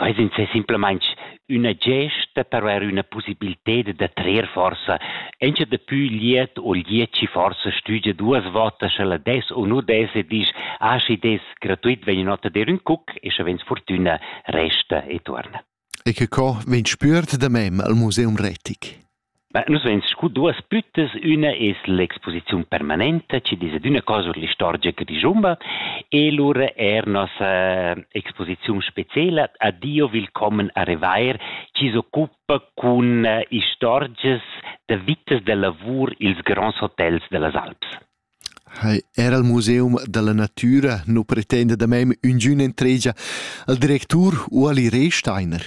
Quei sin sei simplamaintg üna gesta per haver üna possibilted da trer forsa encha dapü liet o liet chi forsa stügia duas votas scha la des o nu des e disch ah schi des gratuit vegn ün'ota dir ün cuc e scha vegns fortüna resta e tuorna. E che co vegn spüert da mem al Museum Retic? Nus vein scu duas büttas. Üna es l'exposiziun permanenta chi desa d'üna cosa our l'istorgia che dischumba e lura eir nossa exposiziun speciela Addio willkommen a Revair chi s'occupa cun istorgias da vitas da lavur i'ls gronds hotels da las Alps. Hai, er al Museum da la natüra nu pretenda da mem üngün entregia al directur u al Ire Steiner.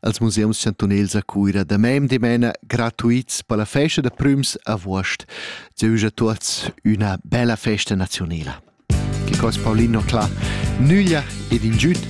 als museums chantunels a Cuira damem dimena gratuits per la festa da prüms avuost. Dieu a tuots üna bella festa nazionela. Che cos Paulino Cla, nüglia ed ingiüt